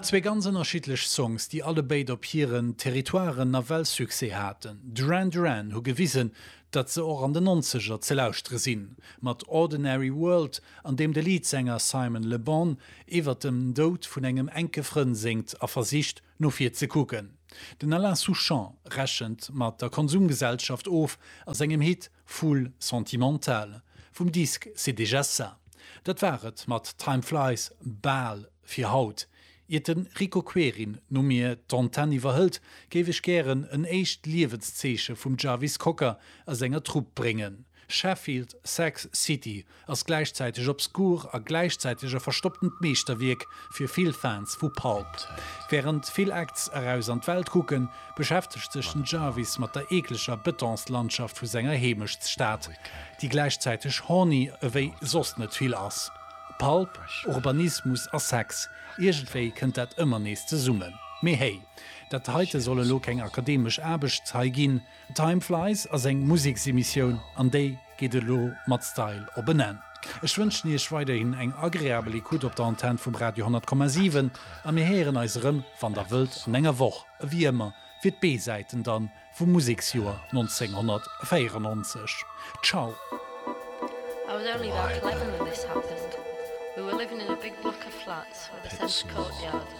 Zwee ganz ënnerschiddlech Songs, déi allebéid op hiren Territoiren nawell Succès haten. Duran Duran hu gewisen, datt se och an den Nonzeger ze lauschtere sinn, mat Ordinary World, an deem de Leadsänger Simon Le Bon iwwert dem Doud vun engem enke Frënn séngt a versicht, no vir ze kucken. Den Alain Souchon rechent mat der Konsumgesellschaft of a sengem Hit Foule sentimentale vum Disque C'est déjà ça. Dat war et mat Time Flies bal fir haut. Iert de Rico Querin no mir d'Antenne iwwerhëlt, géif ech gären en éischt Liewenszeeche vum Jarvis Cocker a senger Trupp bréngen, Sheffield Sax City ass gläichzäiteg obskur a gläichzäiteg e verstopptent Meeschterwierk fir vill Fans vu Pulp. Wärend vill Acts eraus an d'Welt kucken, beschäftegt sech den Jarvis mat der eekleger Betonslandschaft vu senger Heemechtsstad, déi gläichzäiteg horny ewéi soss net vill ass. Pulp, Urbanismus a Sex, iergendwéi kënnt dat ëmmer nees zesummen. Mee hey, dat heite soll elo keng akademesch Aarbechtshai ginn. Time Flies ass eng Museksemissioun an déi geet elo mat Style op en Enn. Ech wënschen Iech weiderhin eng agreabel Ecoute op der Antenn vum Radio 10,7 a mir héieren eis erëm, wann Der wëllt, an enger Woch ewéi ëmmer fir d'B-Säiten dann vum Museksjoer 1994. Ciao!